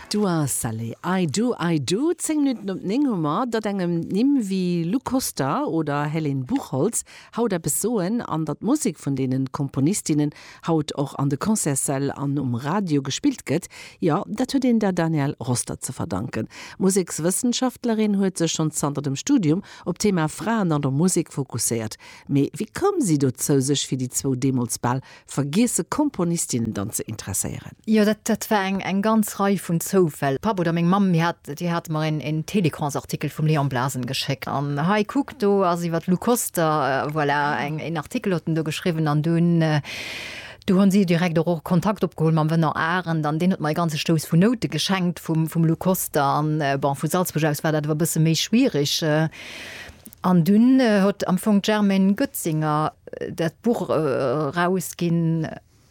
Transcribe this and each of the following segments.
Dua Salé, I Do, I Do. Zéng Minutten op néng hu mer. Datt engem Nimm wéi Lou Koster oder Helen Buchholtz haut eppes soen an datt d'Musek vun deene Komponistinnen haut och an de Concertssäll an um Radio gespillt gëtt, jo, dat huet een der Danielle Roster ze verdanken. D'Musekswëssenschaftlerin huet sech schonn zanter dem Studium op d'Thema Fraen an der Musek fokusséiert. Mee wéi koum si dozou, sech fir déi zwou deemools bal Vergiesse Komponistinnen dann ze interesséieren. Jo, dat, dat war eng, eng ganz Rei vun Zoufäll. De Papp oder meng Mamm, mir hat, déi hate mer een, een Télécrans-Artikel vum Léon Blasen geschéckt, an, hei, kuck, do ass iwwer d'Lou Koster, voilà, eng, een Artikel huet en do geschriwwen, an dunn, du hunn si direkt och, och Kontakt opgeholl mam Venant Arend, an deen huet mer e ganze Stouss vun Noute geschenkt vum, vum Lou Koster, an, bon, vu Salzburg aus war dat wer e bësse méi schwierig. An dunn huet am Fong d'Germaine Goetzinger dat Buch erausginn,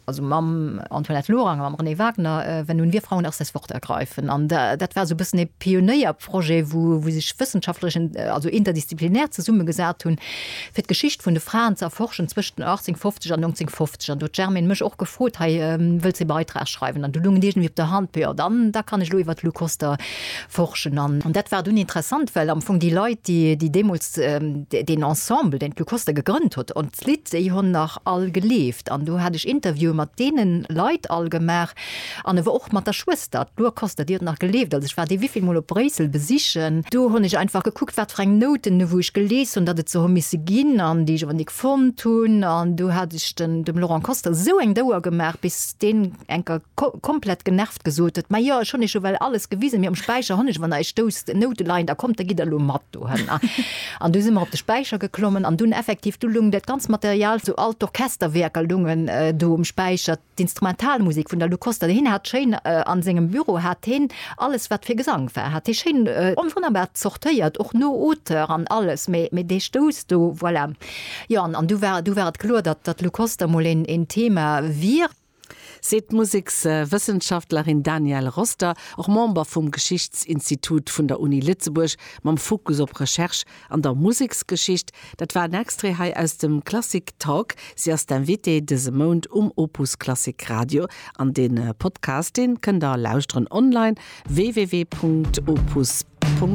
also mam Antoinette Lorang a mam Renée Wagner, Wenn nun wir Frauen erst das Wort ergreifen. An dat war esou e bëssen e Pionéierprojet, wou sech Wëssenschaftlerin, also interdisziplinär, zesummegesat hunn, fir d'Geschicht vun de Fraen ze erforschen zwëschent 1850 an 1950. An do huet d'Germaine mech och gefrot, Hei, wëlls de e Beitrag schreiwen? An do loung et iergendwéi op der Hand, Peuh, jo, dann, da kann ech elo iwwer d'Lou Koster Forschen. An dat war dunn interessant, well am Fong déi Leit, déi, déi deemools deen Ensemble, deen d'Lou Koster gegrënnt huet, an d'Lidd, déi hunn nach all gelieft. An do hat ech Interviewen mat deene Leit all gemaach an awer och mat der Schwëster. D'Lou Koster, déi huet nach gelieft, also ech war déi wivill Mol op Bréissel besichen. Do hunn ech einfach gekuckt, wat fir eng Nouten, wou ech gelees hunn, datt et se hu misse ginn, an déi ech awer ni fonnt hunn. An do hat ech dem Laurent Koster esou eng d'Ouer gemaach, bis dee Enker, ko, komplett genervt gesot huet, Ma jo, ech hunn iech jo well alles gewisen, mee um Späicher hunn ech, wann der iech stousst, en Noutelein, da kommt, da gitt der elo mat dohinner. An du si mer op de Späicher geklommen an dunn effektiv, du lung dat ganz Material, sou all d'Orchesterwierker lungen do um Späicher, d'Instrumentalmusek vun der Lou Koster, hien hat schéin a sengem Büro hat hien alles, wat fir Gesang war, hat hie schéin a wonnerbar zortéiert, och no Auteur an alles, mee, mee dee Stouss do, voilà. Jo, an, an du war, du war et kloer, datt, datt d'Lou Koster mol een, een Thema wier. seet d'Musekswëssenschaftlerin Danielle Roster, och Member vum Geschichtsinstitut vun der Uni Lëtzebuerg mam Fokus op Recherche an der Museksgeschicht. Dat war en Extrait hei aus dem Klassik Talk. Si ass d'Invitée dëse Mount um Opus Klassik Radio. An de Podcast, dee kënnt der lauschteren online, www.opus.